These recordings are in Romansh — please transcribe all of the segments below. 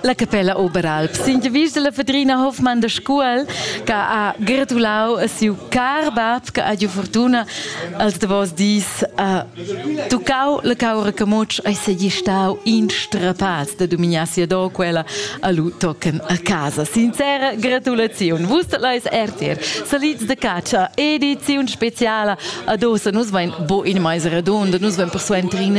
La capella Oberalp sin de vis la Fedrina Hoffmann de Scuol che ha gratulau a siu car bab che ha giu fortuna als davos dis ha tuccau la caura camotsch e segi stau in strapaz de dominar sia do quella a lu tocken a casa. Sincera gratulaziun. Vus leis RTR salids de caccia ediziun speciala ad ossa nus vein bo in meis redonda nus vein persuentrin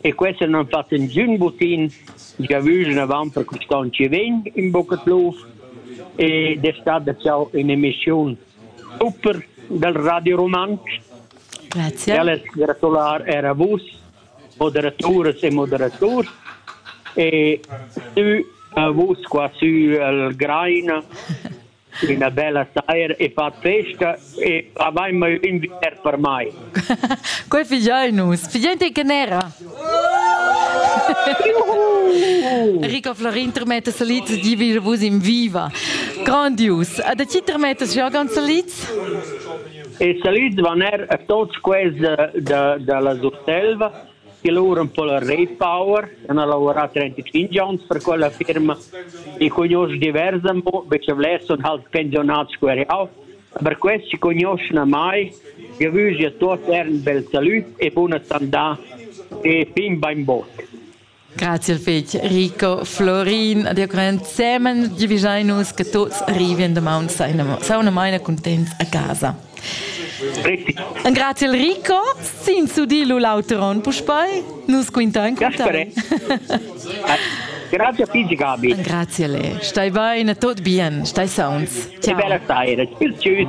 e questa non fa ingiun butin giavüschen avant per quist'on chi vegn ün bucca pluf e d'estar da ciao in emischiun super dal Radio Rumantsch. Grazie. E alles gratular er a vus, moderaturas e moderaturs. E tü a vus qua sü al Graina üna bella saira e far festa e avain mai ün bger per mai. Quel figliai nus, figliente che nera. Enrico Florin termetta salids di vir vus in viva. Grandius. Da chi termetta Jürgen salids? E salids van er a tots quels da, da, da la Surselva E lura ün po la Raypower, han lavurà trentitschinch ons per quella firma. I cugnuosch divers amo, be cha vlers sun halt pensiunats scu er jau. Aber questi cugnuoschan a mai. Eu vügl a tuots eir ün bel salüd e buna sandà e fin bain bod. Grazie fetg Rico, Florin, ad ensemen giuvischai che tuts arrivien domani sauna maina contents a casa. Un grazie Rico, sin sudilu l'auteron puspei, nus quinta in contai. Grazie a Pigi Gabi. Grazie le. Stai bene, tot bien, stai sauns. Ciao. Che bella stai, tschüss.